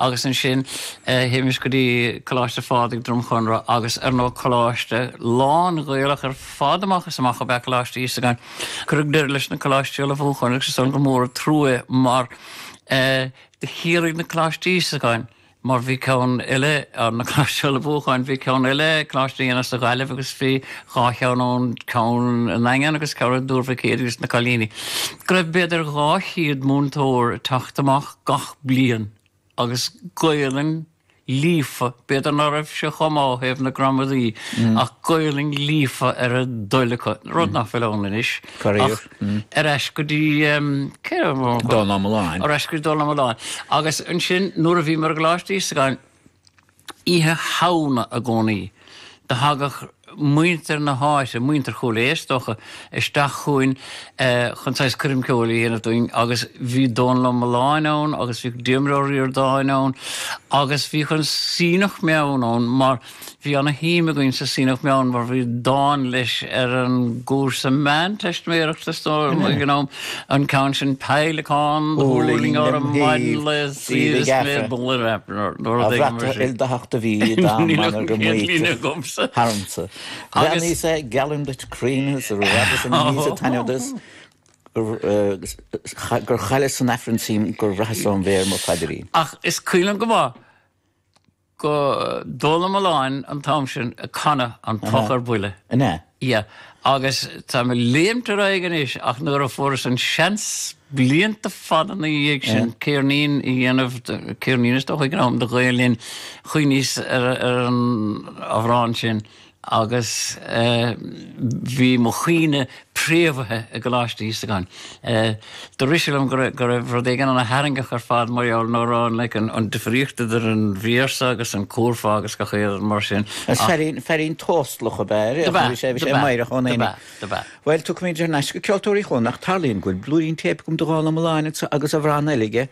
Agus ansin, théimis go dtí Coláiste Phádraig, Droim Chonrach, agus ar ndóigh, coláiste lán-Ghaelach ar fad amach is amach ab ea Coláiste Íosagáin. Cuireadh deireadh leis na coláistí ullmhúcháin, agus is dóigh gur mór an trua é, mar do chiallaigh na coláistí Íosagáin, mar bhí ceann eile, ar na coláistí ullmhúcháin, bhí ceann eile, Coláiste Éanna sa Ghaillimh, agus bhí dhá cheann ann, ceann i nDaingean agus ceann i dTuar Mhic Éadaigh, do na cailíní, go raibh b'fhéidir dhá chéad múinteoir ag teacht amach gach. bliain, agus Gaolainn líofa, b'fhéidir ná raibh sé chomh maith ó thaobh na gramadaí, ach Gaolainn líofa ar a dtoil acu, rud nach bhfuil ann anois. Ach ar ais go dtí ehm, cá raibh mé? Dónal Ó Mulláin. Ar ais go dtí Dónal Ó Mulláin. Agus ansin, nuair a bhíomar i gColáiste Íosagáin, Oíche Shamhna i gcónaí, do thagadh muintir na háite, muintir Chúil Aodha is dócha, isteach chugainn chun saghas coirm ceoil a dhéanamh dúinn agus bhí Dónal Ó Mulláin ann agus bhíodh Diarmuid Ó Ríordáin ann agus bhíodh an Suibhneach Meann ann mar bhí ana-shuim againn sa Suibhneach Meann mar bhí dán leis ar an gcúrsa meánteistiméireachta is dóigh, ag an am. An ceann sin Peidhleacán thuirling orm maidin lae saoire 's mé ag bualadh air. Nuair a bhreac sé ildathacht do bhí dá mbanna go maítear tharmsa. Bhreathnaíos é geallaim duit cruinn is a raibh san aníos a taitneamh duit gur chailleas san Aifreann suim gur bhraitheas óm mhéar mo phaidrín. Ach is cuimhin liom go maith go Dónal Ó Mulláin an t-am sin ag canadh An Poc ar Buile. An ea? Ie. Agus táim ag léimt ar aghaidh anois ach nuair a fuaireas an seans blianta fada ina dhiaidh sin ceirnín a dhéanamh, ceirnín is dócha ag an am, do Ghael Linn, chuimhníos ar an amhrán sin. agus bhí mo chuimhne préamhaithe i gColáiste Íosagáin. Do rith sé liom go raibh rud éigin ana tharraingeach ar fad mar gheall nó raibh an like an difríocht idir an mhír seo agus an cúrfá agus gach aon rud mar sin Is ach fearín, fearín tóstalach ab ea é, do bhí sé, bhí do sé bhí, meidhreach ón do bhí, aonaigh. do bhí. Bhuel, tiocfaimid thar n-ais go Ceoltóirí Chualann ach, tarlaíonn go bhfuil blúirín téip agam de Dhónal Ó Mulláin anso agus amhrán eile aige,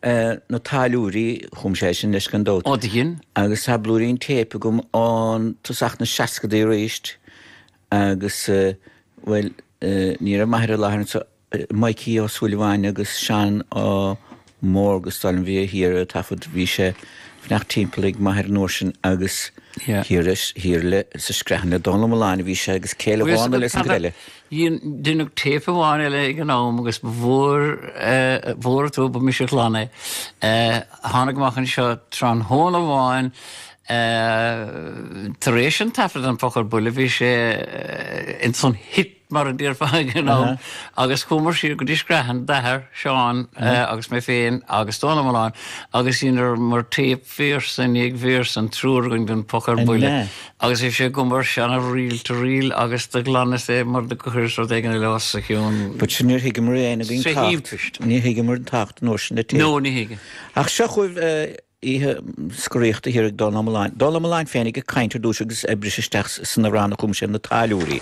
na tailliúirí, chum sé sin leis gan dabht. Ó dhein. Agus tá blúirín téip agam ón tosach na seascadaí arís agus, bhuel, ní raibh m'athair i láthair anseo, Mikey Ó Súilleabháin agus Seán Ó Mórdha is dóigh liom a bhí a thiar a' taifead, bhí sé fanacht timpeall ag m'athair an uair sin agus thiar le, thiar le, sa Screathan le Dónal Ó Mulláin a bhí sé agus céile bhána le san go eile. Dhíon, deineadh téip amháin eile ag an am agus ba mhór, mhór an trua, ba mise a ghlan é. Tháinig amach anseo tráthnóna amháin tar éis an taifead den Phoc ar Buile, bhí sé in san hit, mar a déarfá ag an am, agus chuamar siar go dtí Screathan, d'athair Seán agus mé féin agus Dónall Ó Mulláin agus dheineamar téip véarsa i ndiaidh véarsa, an triúr againn den Phoc ar Buile, agus bhí sé agam ar seana-reel to reel agus do ghlanas é mar do chuireas rud éigin eile os a chionn. But sin níor thuigeamar é fhein againn tábhacht, ní thuigeamar an tábhacht nó sin na tí. No, ní thuigeann. Ach seo chugaibh oíche scoraíochta thiar ag Dónall Ó Molain. Dónall Ó Mulláin féin ag caint ar dtús agus ag briseadh isteach sna ranna a chum sé ar na táilliúirí.